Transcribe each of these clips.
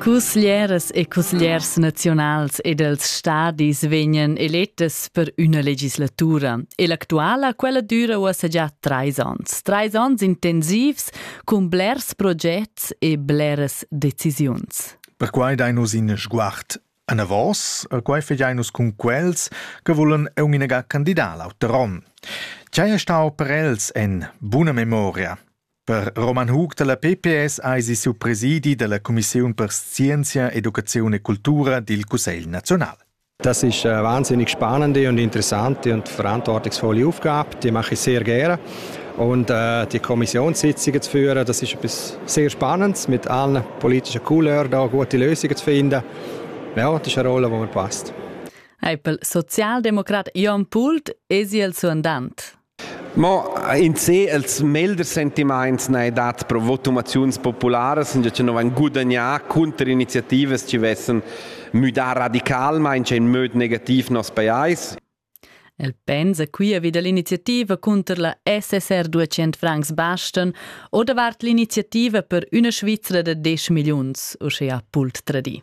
Cussglieras e cussgliers nazionals ed els stadis vegnan elettas per üna legislatura e l'actuala quella düra uossa già trais ans. Trais ans intensivs cun blers progets e bleras decisiuns. Perquai dai nus in sguard anavos, quai fegiai nus cun quels che volen eun inega candidar l'auter on. Chai è stau per els en buna memoria? Per Roman Hug dalla PPS eisi siu presidi dalla cumissiun per scienzia, educaziun e cultura dil Cussegl naziunal. Das ist eine wahnsinnig spannende und interessante und verantwortungsvolle Aufgabe. Die mache ich sehr gerne. Und äh, die Kommissionssitzungen zu führen, das ist etwas sehr Spannendes, mit allen politischen Couleurs da gute Lösungen zu finden. Ja, das ist eine Rolle, die mir passt. Eipel Sozialdemokrat Jan Pult, es il suandant. Mo in sé els melders sentimaints n'hai dat pro votumaziuns popularas, già cha no vain gudagnà cunter iniziativas chi vessan müdà radicalmaing in möd negativ nos pajais. El pensa quia vi da l'iniziativa cunter la SSR 200 francs bastan o davart l'iniziativa per üna Svizra da 10 milliuns, uschea Pult tradì.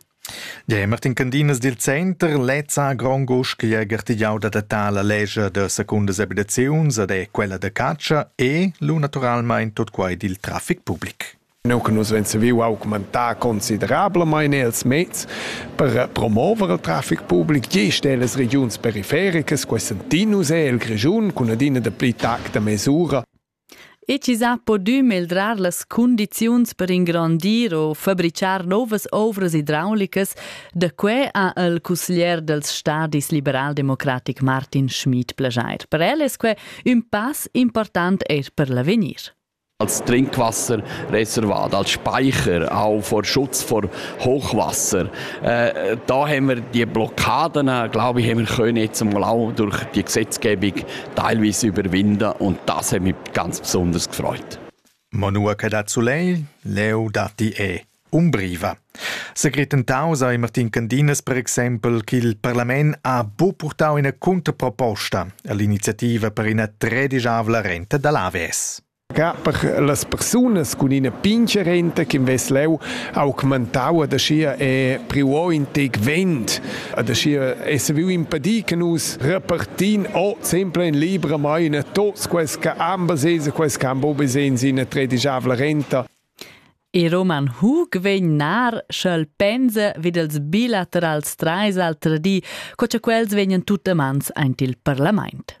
Martin Candinas dil Center lez ha grond uschia gartegiau d'adattar la lescha da secundas abitaziuns ed è quella da catscha e lu naturalmein tot quei dil traffic public. Nous che nus vein saviu augmentar considerablamain els mezs per promover il traffic public gest ellas regiuns perifericas, quei sentin nus el Grischun cun adina de pli tact da mesura. E chi s'ha podü meldrar las cundiziuns per ingrandir o fabrichar novas ouvras idraulicas, da que ha il cusglier dals stadis liberaldemocratic Martin Schmid plejair. Per el es que ün pass important eir per l'avegnir. als Trinkwasser reservat, als Speicher, auch vor Schutz vor Hochwasser. Äh, da haben wir die Blockaden, glaube ich, haben wir können jetzt mal auch durch die Gesetzgebung teilweise überwinden und das hat mich ganz besonders gefreut. Ma nua che dat sulei, leu datti è Umbriva. Secretentau sei Martin Candinas per exempel ch'il parlament ha bu purtau ina contraproposta all'iniziativa per ina tredisavla renta dall'AWS. Ca per las persunas cun ina pincha renta ch'invess leu augmentau ad aschia e priu o in tec vent, ad aschia esser viu impedir che nus repartin o sempre in libra maina tots quels che han basegns e quels che han buca bisogns ina tredigiavla renta. Il Roman Hug vegn nar, sch'el pensa vid els bilaterals trais al di, co cha quels vegnan tut amans aint il parlamaint.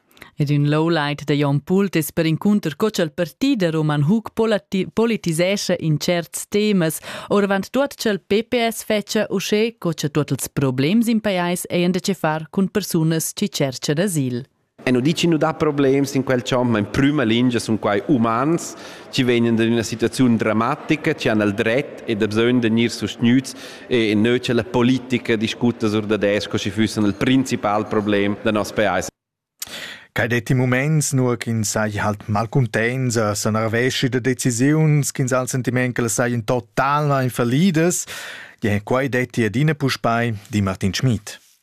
Ed ün lowlight da Jon Pult es perincunter co cha'l parti da Roman Hug politisescha in tscherts temas, ouravant tuot cha'l PPS fetscha uschè co cha tuot ils problems in pajais hajan da chefar cun persunas chi tscherchan asil. E nu dici nu dà problems in quel champ, ma in prüma lingia sun quai umans chi vegnan da üna situaziun dramatica, chi han il dret e da bsögn da gnir sustgnüts E neu c'è la politica discuta sur da desco, schi fussen il principal problem da nos paese. Quai detti moments, nur ch'ins sai halt malcuntents, sa nerveschi da decisiuns, ch'ins ha il sentiment che sai in total in fallidas. Ja, quai detti adina puspei di Martin Schmid.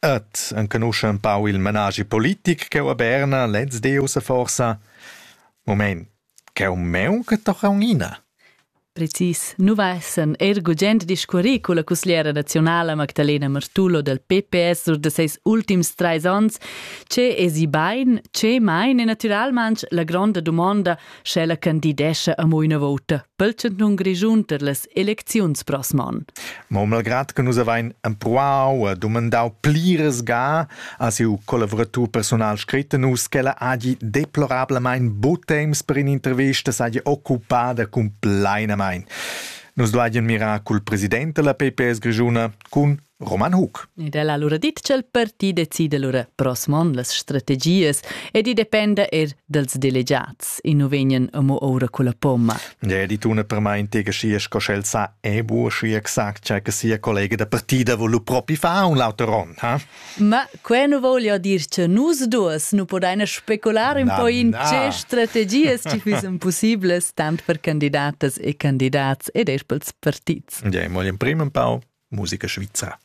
Et enconuscha empau il managi politic cheu a Berna lez Deus forsa? Moment, cheu meu che toca unina. Precis, nu va essan er gugent discurri con la cusgliera nazionala Magdalena Martullo del PPS sur de seis ultims trais ans, ce esi bain, ce mein e naturalmanch la gronda dumonda sch'ella candidescha amo üna vouta pel chantun Grischun per las elecziuns prossm an. Ma malgrad che nus avain empruau e dumandau pliras ga a siu collavratur personal scretto nus ch'ella hagi deplorablamain bu temps per in'intervista saja occupada cumplainamain. Nus duajen mirar cul president della PPS grischuna cun Roman Hug. Ed el ha lura dit ch'el parti decida lura proxim onn las strategias ed i dependa er dels delegiats. I nu vegnan amo oura culla pomma. Ja, di tuna per mai intega schi sco sch'el sa e bu schi exact cha che sia collega da partida volu propi fa un l'auter on, ha? Ma Quei nu vogl jo dir che nus duas nu podaina specular un po in tge strategias chi füssen possiblas tant per candidatas e candidats ed eir pels partits. Ja, moglian prima un pau musica svizra.